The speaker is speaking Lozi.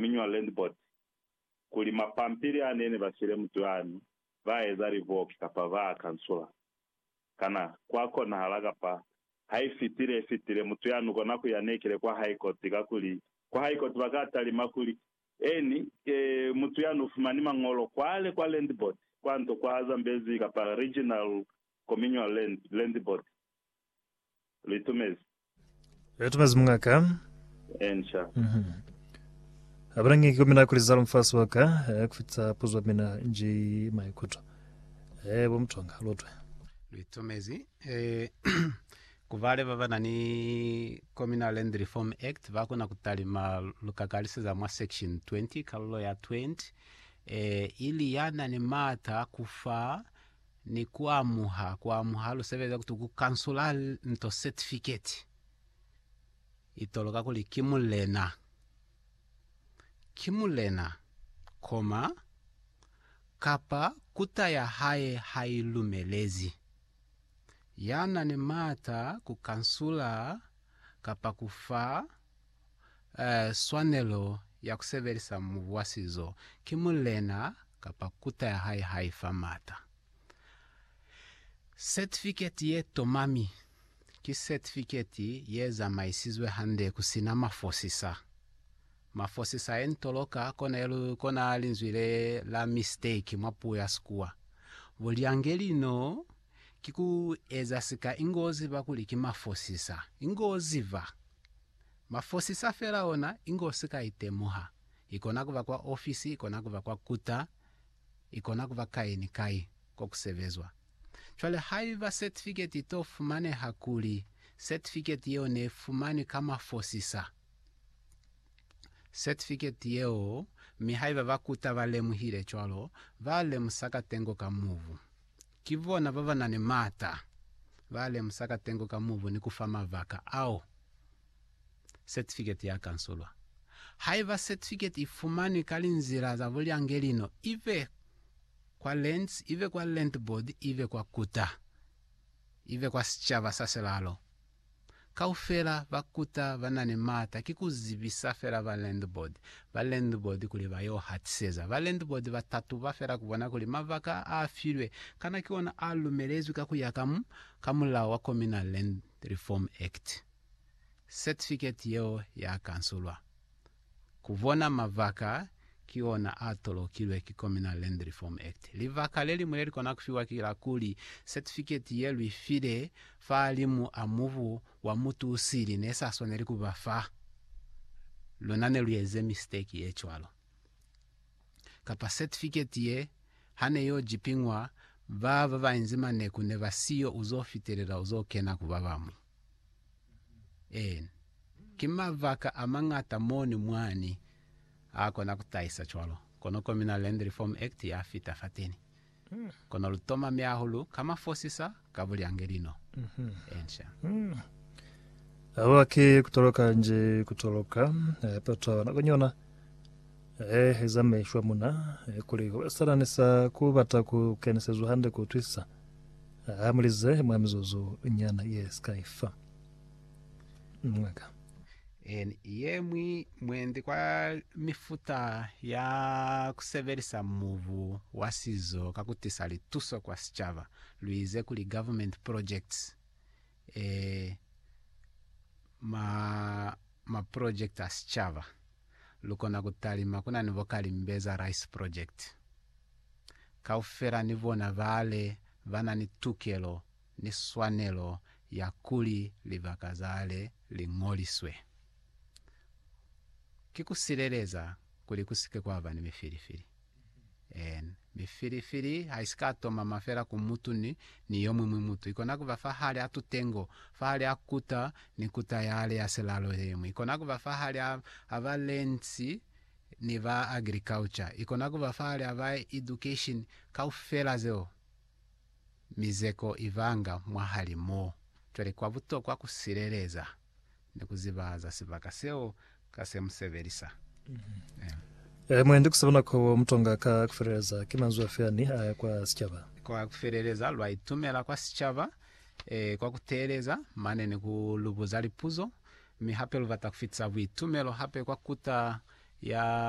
miñwa land board kuli mapampili a nene ba file mutuani ba eza livoki kapa ba a kansula. Kana kwa konahala kapa ha i fitile i fitile mutu ya nu kona ku ya nekile kwa high court kakuli kwa high court ba ka talima kuli eni e mutu ya nu fumani mañolo kwale kwa land board kwa nto kwa Zambezi kapa regional komiñwa land land board Litumezi. Litumezi mungaka. Ensha. Mm -hmm. Abalangi kikomina kuli zalo mfasi waka eh, kufitsa puzwa mina nji maikuto. Eh, bo mtonga lotwe. Litumezi. Eh, kubale baba nani Communal Land Reform Act bakona kutalima lukakaliseza mwa section 20 kalulo ya 20 eh, ili yana ni mata kufa ni ku amuha ku amuha lu sebeleza kuti ku kansula nto certificate i toloka kuli ki mulena ki mulena, koma, kapa kuta ya hae ha i lumelezi. Ya na ni maata ku kansula kapa ku fa swanelo ya ku sebelisa mubu wa sizo ki mulena kapa kuta ya hae ha i fa maata. Setifiketi ye tomami ki setifiketi ye zamaisizwe hande ku si na mafosisa. Mafosisa ye ntoloka kona linzwi le la mistake mwa puo ya Sikuwa. Bulyange lino ki ku eza sika ingo ziba kuli ki mafosisa. Ingo ziba! Mafosisa fela ona inge u si ka i temuha. I kona ku ba kwa ofisi, i kona ku ba kwa kuta, i kona ku ba kai ni kai ko ku sebezwa. Cwale haiba setifiketi i t'o fumaneha kuli setifiketi yeo ne i fumanwi ka mafosisa, setifiketi yeo, mi haiba ba kuta ba lemuhile cwalo, ba lemusa katengo ka mubu. Ki bona ba ba na ni m'ata ba lemusa katengo ka mubu ni ku fa mabaka ao setifiketi ya kansulwa. Haiba setifiketi i fumanwi ka linzila za bulyangelino, ibe kwa Lands, ibe kwa Land Board, ibe kwa Kuta, ibe kwa sicaba sa silalo, Kaufela ba kuta ba na ni maata ki ku zibisa fela ba landlord, ba landlord kuli ba y'o hatiseza. Ba landlord ba tatuba fela ku bona kuli mabaka a filwe kana ki ona a lumelezwi ka ku ya ka mu, ka mulao wa Communal Land Reform Act. Certificate yeo ya kansulwa. Ku bona mabaka ki ona a tolokilwe ki Communal Land Reform Act. Libaka le liñwi le li kona ku fiwa ki la kuli setifiketi ye lu file fahalimu a mubu wa mutu u sili ne sa swaneli ku ba fa luna ne lu eze misteki ye cwalo, kapa setifiketi ye ha ne y'o jipiñwa ba ba ba inzi maneku ne ba siyo u z'o fitelela u z'o kena ku ba bamu. Eena. Ki mabaka amañata moni mwani aakona kutahisa cwalo, kono ko mina Land Reform Act yafita fateni. Kono lutoma miaho lu ka mafosisa ka bulyange lino. Eena. Haba ki kutoloka nji kutoloka, yatotwa nakonyona. He eza mishwa muna, kuli hube salani sa ku bata ku kenisezwa hande ku utwisisa. Ha mu lize mwa mizuzu nyana ye si ka ifa. Mwaka. Eni ye mwi mwendi kwa mifuta ya ku sebelisa mubu wa sizo ka ku tisa lituso kwa sicaba, lu ize kuli government projects, ee, ma, ma project a sicaba. lukona kutalima kuna ni bo Kalimbeza Rice Project. Kaufela ni bona bale bana ni tukelo ni swanelo ya kuli libaka zale li ngoliswe. Ki kusileleza kuli kusike kwaba ni mifilifili. En, mi filifili haisika tomama fela ku mutu ni, ni yomuñwi mutu. Ikona kuba fahali a tutengo, fahali a kuta ni kuta yale ya silalo yeñwi. Ikona kuba fahali a, a ba lands ni ba agriculture. Ikona kuba fahali a ba education, kaufela zeo. Mizeko ibanga mwahali mo. Cwale kwa butokwa ku sileleza. ni ku zibahaza sibaka seo ka se mu sebelisa. Amen. Ee, mwendi ku sebana ko bo mutonga ka ku feleleza. Ki manzwi afi ani a ya kwa sicaba? Kwa ku feleleza, lwa itumela kwa sicaba ee, kwa ku teeleza mane ni ku lu buza lipuzo, mi hape lu bata ku fitisa buitumelo hape kwa kuta ya.